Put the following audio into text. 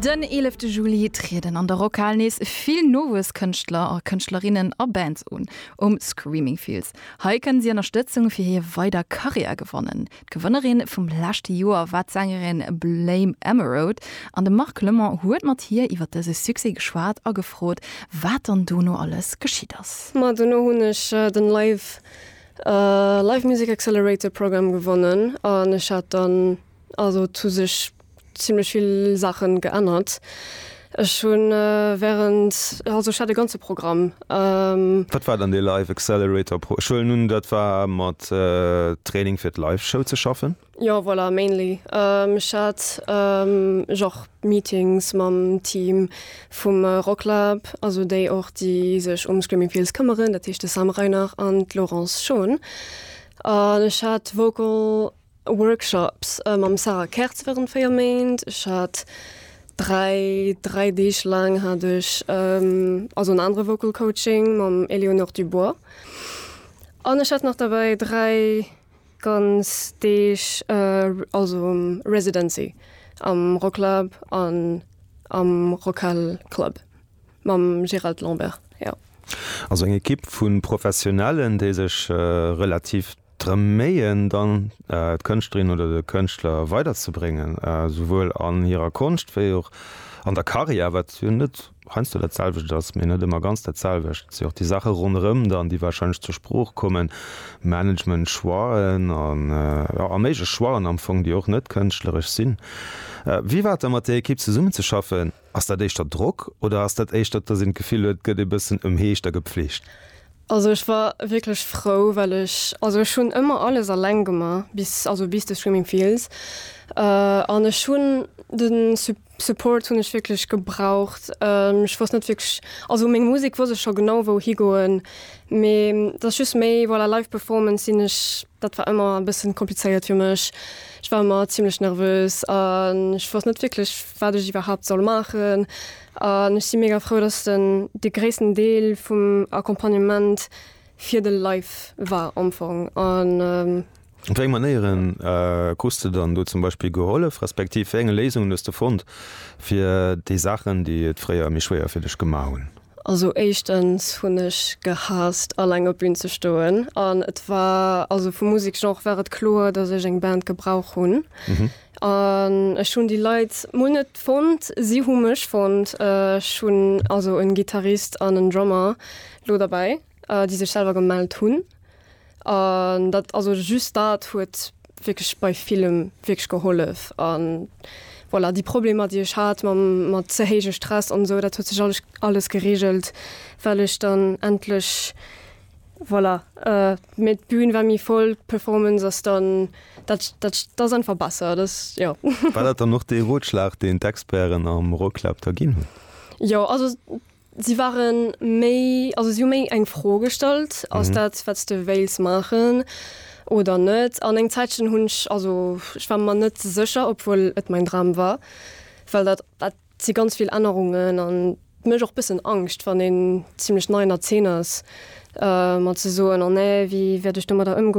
Den eelefte Juli trieden an der Rockhal nees vill nowuess Kënschtler a Kënschtlerinnen a Bands un. Um Screaming Fields hei kënne si Ënnerstëtzung fir hir weider Karriär gewannen. D'Gewënnerin vum leschte Joer war d'Sängerin Blame Emeraude an de Marc Lemon huet mat hir iwwer dëse Succès geschwat a gefrot, wat dann dono alles geschitt ass. Ma dono hunn ech den Live Music Accelerator Programme gewonnen an ech hat dann Also et hu sech zimlech vill Saache geännert. Ech hunn während, also ech hat e ganze Programm. Wat war dann dee Live Accelerator Pro? Ech huelen un dat war mat Training fir d'Live Show ze schaffen? Jo voilà, mainly. Ech hat ech och Meetings mam Team vum Rocklab, also déi och déi sech um Screaming Fields këmmeren, dat heescht de Sam Reinach an d'Laurence Schon. An ech hat Vocal. Workshops mam Sarah Kertz wärend 4 Méint. Ech hat 3, 3 Deeg laang hat ech also en anere Vocal Coaching mam Éléonore Dubois. An ech hat nach derbäi 3 ganz Deeg also Residency am Rocklab an am Rockhal Club mam Gérald Lambert, jo. Also eng Ekipp vu Professionellen, déi sech relativ. drëm méien, dann d'Kënschtlerin oder de Kënschtler weiderzebréngen, souwuel an hirer Konscht wéi och an der Karriär, wat jo net heiansdo dat selwecht ass, mee net ëmmer ganz dat selwecht. Et si och déi Saache ronderëm dann, déi warscheinlech zur Sprooch kommen, Management-Choixen a méiglech Choixen am Fong, déi och net kënschtleresch sinn. Wéi war et da mat där Ekipp zesummenzeschaffen? Ass dat éischter Drock oder ass dat éischter, dass een d'Gefill huet, et gëtt ee bëssen ëmheescht a gepflegt? Also ech war wierklech frou, well ech, also ech hunn ëmmer alles alleng gemaach, bis, also bis de Swimming Fields. An ech hunn de Su, Support hunn ech wierklech gebraucht. Ech wousst net wierklech, also meng Musek wousst ech scho genau wou higoen, mee dass just méi, voilà, Live Performance sinn ech Dat war ëmmer e bëssen komplizéiert fir mech. Ech war ëmmer zimlech nervös an ech wosst net wierklech wat ech iwwerhaapt soll maachen. An ech si mega frou dass den de gréissten Deel vum Accompagnement fir de Live war am Fong an. Op wéi eng Manéieren krus de dann do zum Beispill gehollef, respektiv wéi enge Léisungen hues de fonnt fir déi Saachen déi et fréier méi schwéier fir dech gemaach hunn? Also éischtens hunn ech gehaasst alleng op Bühn ze stoen an et war, also vum Museksgenre war et kloer, datt ech eng Band gebrauch hunn an ech hunn déi Leit mol net fonnt, si hu mech fonnt. Ech hunn also en Gittarist an en Drummer lo derbäi. déi sech selwer gemellt hunn an dat also just dat huet wierklech bei villem wierklech gehollef an voilà déi Problemer déi ech hat mam mat ze héije Stress an esou dat huet sech alles alles geregelt well ech dann endlech voilà mee d'Bün war méi voll d'Performance ass dann dat dat ass einfach besser dat jo. War dat dann och dee Rotschlag deen d'Experten am Rocklab da ginn hunn? Jo also Si ware méi, also si hu méi eng Fro gestallt, ass mhm. dat wat de wéils maachen oder net. An eng Zäitchen hunn ech also ech war man net sécher, obwuel et mein Dram war, well dat dat si ganz vill Ännerungen an mech och bëssen Angscht, wann een ziemlichlech nei Erzeeners äh, mat ze soen an oh, nee, wie wäert ech do mat der ëmgoen.